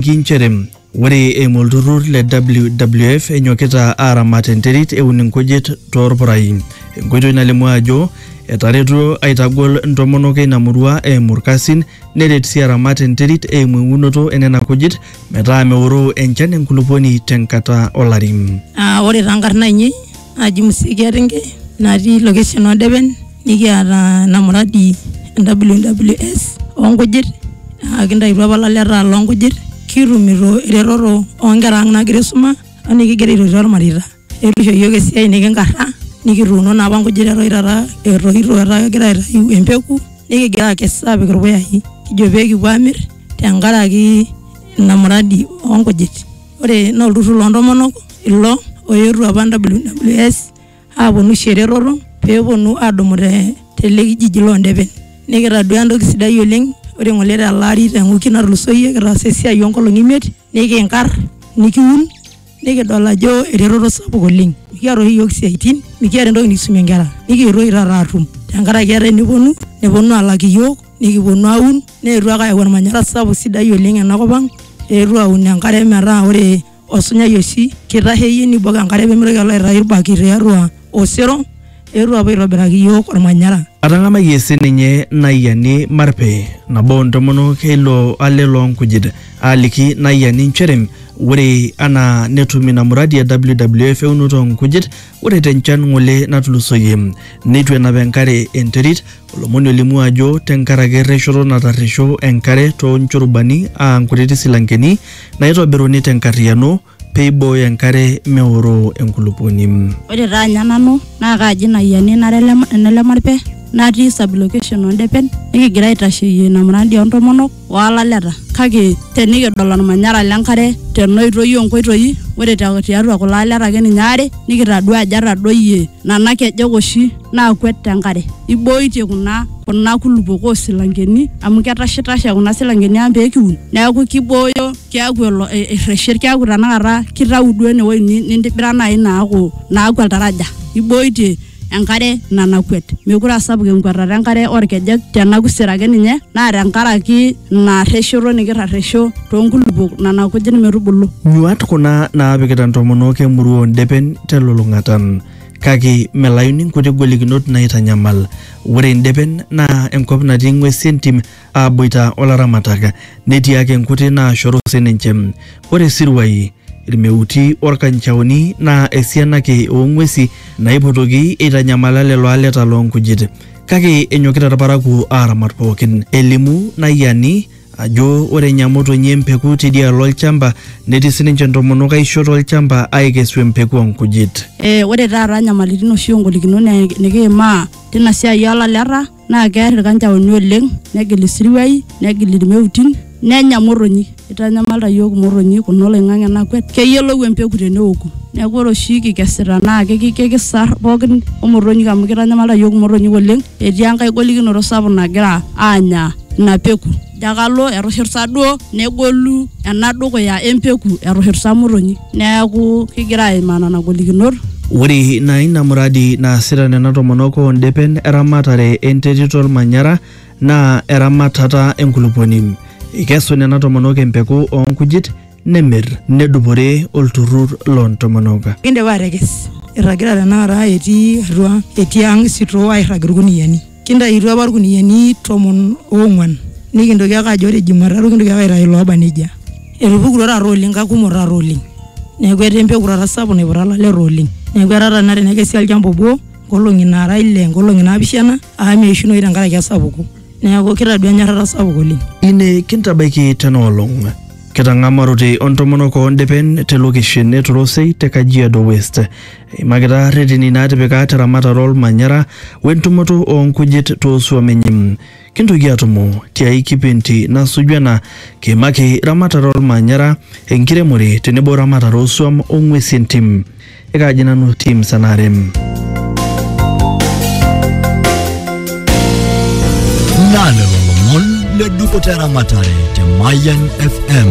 etejoki nchere ore eimu olturrur le WWF enyokita aaramat enterit eun inkujit toorpurai enkoitoi nalimu ajo etaretuo aitagol ntomonok eina murua eimu irkasin neret sii aramat enterit eimu eunoto enena kujit metaa meoroo enchan enkulupuoni tenkata olari. Ah, ore taa nkarna ainei naji Musikia Ringe natii location oo Depen nikiata ena muradi e WWS oo nkujit naa kintayutuo apa ilaleta loo nkujit kitumito eretoto oo nkera ang' naagira aisuma o nikigira aitotio irmareita. Neeku isho iyiok esiai nekinkarra nikituuno naa apa nkujit eton taata etoito etaa kegira aitayu empeku nikigira aakes aapik irpuyai kijo pee kipuo aamir tenkaraki ina muradi oo nkujit. ore naa olturrur loontomonok ilo oetuo apa WWS aaponu aisho eretoto peeponu aadumu te tele kijiji loondepen nikitaduaa entoki sidai oleng ore ng'ole tele ari te wiki natulusoyie kitaasa esiai oonkolong'i imiet nikinkarr nikiun nikidol ajo eretoto sapuk oleng mikiata oshi iyiook isiaitin mikiata entoki nikisumie inkera nikietuo oshi taata aatum tenkaraki etaa eneponu neponu aalak iyiook nikiponu aaun. neetuo ake ayau olmanyara sapuk sidai oleng ena kop ang, eetuo aaun enkare metaa ore osunyai oshi keitasheyie neibok enkare pee meitoki alo aitayu ilbaki tiatua osero, eetuo aapuo aitobiraki iyiook olmanyara. Atang'amayie sii ninye Nayiani Marpe, nabo oo ntomonok e ilo ale loo nkujit, aaliki Nayiani inchere ore anaa netum ina muradi e WWF eunoto oo nkujit, ore te nchan ng'ole natulusoyie neitu enap enkare enterit, Olomoni olimu ajo tenkaraki erreshoto natarresho enkare too nchurubani aa nkutiti silankeni naaitobiruni te nkarriyiano pee eibooyo enkare meoroo enkulupuoni. Ore taa anya nanu naa kaaji ina ayiani nara ene Lemarpe natii sub-location oo Ndepen nikigira aitasheyie ina muradi oo ntomonok. olaleta kake tenikidol olmanyara lenkare tenoitoi onkoitoi ore tiatua kulo aleta ake ninye aare nikitadua ajo etadoyie nana kejek oshi naakwet tenkare ibooitie kuna kuna kulupok osilankeni amu ketashitashe kuna silankeni ang pekiun neeku kibooyo keeku elo erreshet keeku tanakata kitau duo enewoi nintibira naaji naaku naaku oltaraja ibooitie. enkare nanakwet. Meekure aa sapuk enkwetata enkare oo ilkejek te nakusir ake ninye naa tenkaraki ina rreshoto nikirresho too nkulupuok nena kujit metubulu. Nyuaat kuna naapikita ntomonok e murua oo ndepen te lulung'ata. Kake melayuni nkuti golikinot naaitanyamal. Ore ndepen naa enkop natii ng'uesi e ntim aa boita o laramatak. Netii ake nkuti naashoru sii ninche. Ore siruai. Ilmeuti olkanchaoni naa esiana ake oo ng'uesi naipotoki eitanyamala lelo aleta loo nkujit. Kake enyokita ilparakuo aaramat pookin. Elimu Nayiani ajo ore enyamotonyi e mpeku teidialo olchamba netii sininche ntomonok aisho to lchamba aaikesu empeku oo nkujit. Ore taata nyamalitin oshi o ngolikinot nikiimaa teina siai oo laleta naa kear ilkanjaoni oleng negil isiruai negil ilmeutin nenya motonyi eitanyamalita iyiook imotonyi kuna oloing'ang'e nakwet keyiolou empeku teneoku neeku ore oshi kikesita naa kiki- kikisar pookin omotonyik amu keitanyamalita iyiook imotonyik oleng etii enkae golikinoto sapuk nagira aanya ina peku. Jakalo etushurta duo negolu ena dukuya empeku etushurta motonyi. Neaku kigira aimaa nena golikinot. Ore ina ina muradi naasita nena tomonok oo ndepen eramatare enterit olmanyara naa eramatata enkulupuoni. Eikesu nena tomonok empeku oo nkujit nemir nedupore olturrur loo ntomonok. Kindipa atekes, irragita tenakata etii atua etii ang sitoo airrag ilkuniyiani. Kintayutuo apa ilkuniyiani tomon oong'uan nikintoki ake ajo ore jumatatu kintoki ake aitayu ilooba nejia. Etupukutuo taata oleng kakumok taata oleng. Neeku etaa empeku taata sapuk naiputa ilaleta oleng. Neeku etaa taata tenakata tenekesi olchamba obo nkolong'i naara ile nkolong'i naapishana amu meishunoyu tenkaraki esapuko. Neeku kitadua enyorrata sapuk oleng. Ine kintabaiki tena olong. Ketang'amarote o ntomonok oo ndepen te lokeshen e Torosei te Kajiado West. Eimakita reteni naatipika te ramatare olmanyara we ntumoto oo nkujit too suam enye. Kintoki atumo tiai kipindi nasuju ena kiimaki ramatare olmanyara, enkiremore tenebo ramatare oo suam o ng'uesi entim. Ekaaji nanu team Sanarem. Naa lelo lomon le dupoto eramatare te Mayian FM.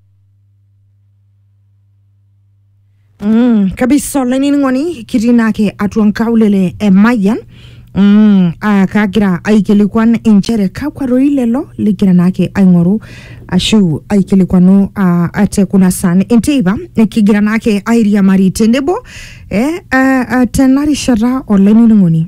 Mm, kabisa olainining'oni kitii naake atua nkaulele e Mayian mm, ah, kagira aikilikuan inchere kakwa roi lelo ligira naake aing'oru ashu aikilikuanu ah, ate kuna saan enteipa kigira naake airiamari tenebo eh, ah, ah, tena rishata olainining'oni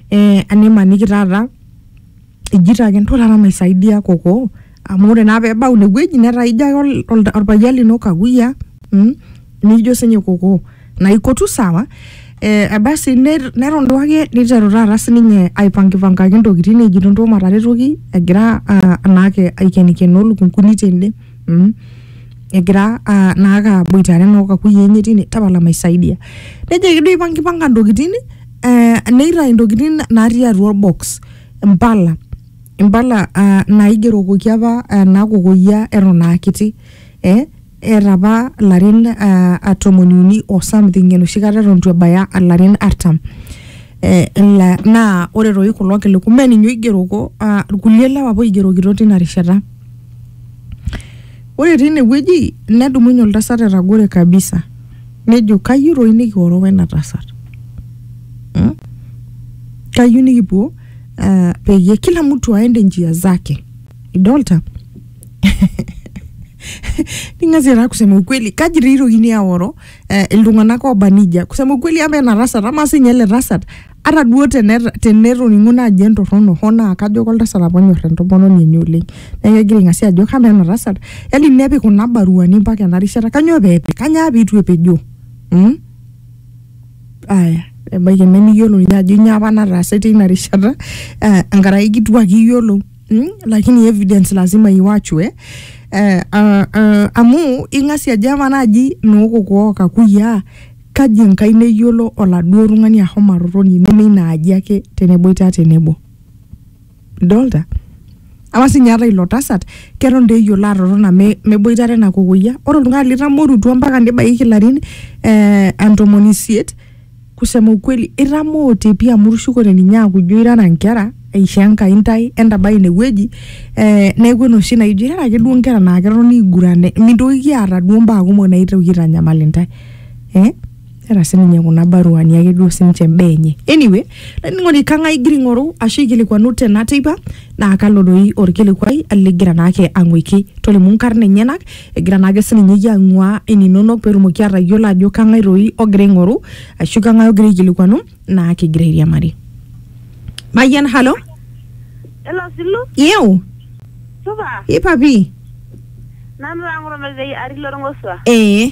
eh, animaniki taata ijito ake nto taata maisaidia koko amu ore naa pebau inewueji netaa ijo ake ol- ol- orpayian lino kakuyiaa mm? nijo sinye koko naipotu sawa eh, basi ner- neton duake niteru taata sininye aipangipankaki intokitin ejito nto mataretoki egira ah, naake aikenikenoo lukunkuni tende mm? egira ah, naake aboitare noo kakuyiaa enye tine tapala maisaidia nejoki duo ipangipanka intokitin eh, neitayu intokitin natii atua orbox impala impala ah, naigerokoki apa ah, nakokoyia eton aa kiti eh, eeta apa ilarin ah, ah, tomoni uni o something enoshi kata eton itu ebaya ilarin artam eh, ila- naa ore toi kulo kiliku mee ninye oigeroko ah, irkulie lewa apa oigerokito tina rishata ore tine wueji nedumunye oltasat etagore kabisa nejo kayieu toi nikioro wena tasat hmm? kayieu nikipuo uh, peyie kila mtu aende njia zake idolta ning'asie taa kusema ukweli kaji dei itokini aoro eh, iltung'anak oba nijia kusema ukweli ama ena tasat ama sinye ele tasat ata duo tene- tenetoning'uno ajo entorrono hoo naa kajo koltasat apa onyor entomononi enye oleng neeku egira aing'asia ajo kamaa ena tasat yani nepik kuna baruani mpaka ena rishata kanyoo peepik kanyaa piitu epejoo mm? aya ebaiki nemiyiolo ninye ajo inyoo apa nataase teina rishata eh, enkaraki kituak iyiolou mm? lakini evidence lazima iwachu eh? Eh, ah, ah, amu ing'asia ajo ama naaji nookoko okakuyiaa Kaji Enkai neyiolo oladuo tung'ani ahomo atotoni neme ina aji ake teneboita tenebo? Idolta? Amaa sii ninye ata ilo tasat keton doi eyiolo atotona me, meboitare ena kokoyia. Ore oltung'ani litamorutua mpaka nebaiki ilarin eh, ntomoni isiet kusema ukweli itamoote pii amu itushukote ninye aaku ijo irara inkera eishoo Enkai intae entabai inewueji eh, neeku enoshi naijo irara ake duo inkera naa ketoni aiguran mintokiki aata duo imbaa kumok naitoki aitanyamal intae. eh? era sininye kuna baruani ake duo sininche imbaa enye anyway laining'oni kang'ae igira aing'oru ashu aikilikuanu tena teipa naa kalo doi orkilikuai ligira naake ang'uiki tolimu inkarn enyenak egira naake sininye iyie ang'ua ininonok petumoki atayiolo ajo kang'ae doi ogira aing'oru ashu kang'ae ogira aikilikuanu naa kigira airiamari mayian halo Hello, Silu. iu Supa. ipapi Nanu taa ng'oto natii atii lorng'osua. ee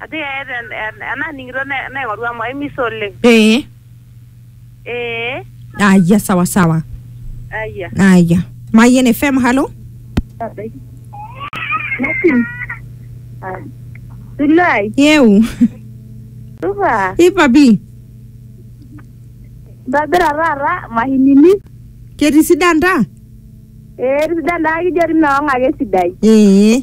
Ajo eeta en- en- enaning'ito ne- naing'oru amu aimisa oleng. ee Ee, aya sawa sawa ayia. aya mayen fm halo Tulai, yeu supa, ipapi ntobira taata mahinini. ketii sidan ta Ee, tisidan taa kijo ri meong'ake sidai. ee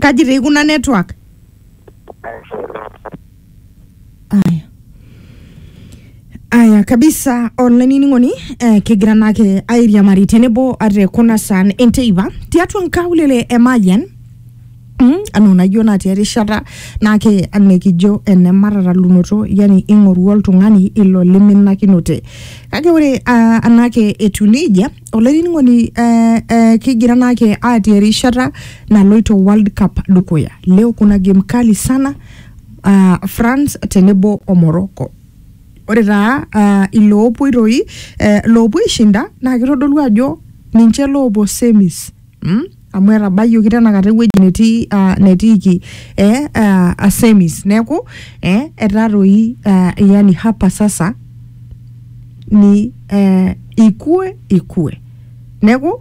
kaji tii kuna network aya aya kabisa olainining'oni eh, kigira naake airiamari tenebo ate kuna saan enteipa tiatua nkaulele e Mayian Mm, anaa unajua naa tia rishata naake anikijo ene matatalunoto yani ing'oru oltung'ani ilo liminakinote kake ore uh, anake etiu nejia olainining'oni eh, eh, kigira naake aatii erishata naloito world cup dukuya leo kuna game kali sana ah, france tenebo o morocco ore taa ah, iloopuoi toi eh, loopuo aishinda naa kitodolu ajo ninche loopuo semis mm? amu etabayioki tenakata ewueji netii ah, netiiki eh, ah, asemis neeku eh, etaa toi ah, yani hapa sasa ni eh, ikue ikue neeku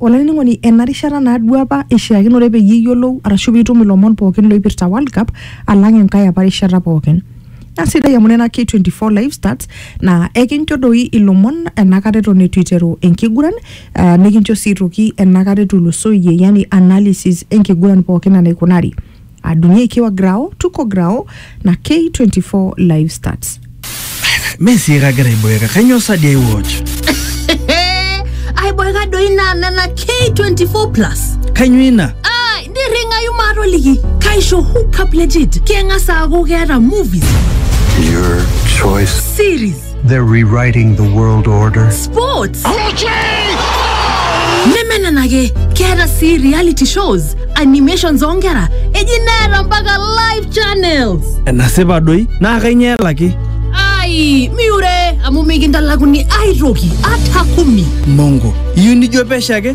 olainining'oni ena rishata naaduo apa ishiakinore peyie iyiolou arashu piitum ilomon pookin loipirta world cup alang enkae apa rishata pookin na sidai amu nena K24 live stats na ekincho doi ilomon enakata eton eitu iteru enkiguran uh, nikincho sii toki enakata etulusoyie yani analysis enkiguran pookin enaikunari adungie ikiwa grao tuko grao na K24 live stats Mee sii kagira aiboeka, kainyoo sa dii aiwatch? aiboeka doi naa nena K24 plus Kainyoo ina? nirringayu maatoliki kaisho hookup legit keng'as aaku keeta movies Your choice. series They're rewriting the world order. sports neme nena ake keeta sii reality shows animations oonkera eji neeta mpaka live channels enasipa doi naa kainyoo elaki ai miure amu mikintalakuni aitoki ata kumi mongo iyieu nijo pesho ake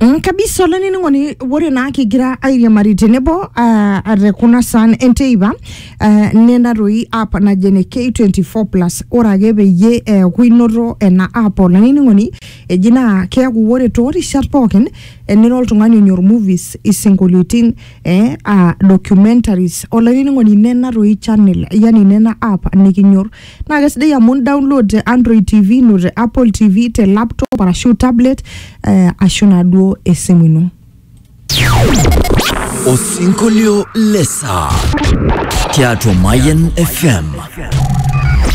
Mm, kabisa olainining'oni ore naa kigira airiamari tenebo uh, te kuna saan enteipa uh, nena toi app naji ene K24 plus ore ake peyie eeku inoto ena app olainining'oni eji naa keeku ore toorishat pookin eh, nira oltung'ani onyor movies isinkolioitin eh, uh, documentaries olainining'oni nena toi channel yani nena app nikinyor naa kesidai amu download te android tv ino te apple tv te laptop arashu tablet eh, ashu naaduo esimu ino Osinkolio lesaa tiatua Mayan FM.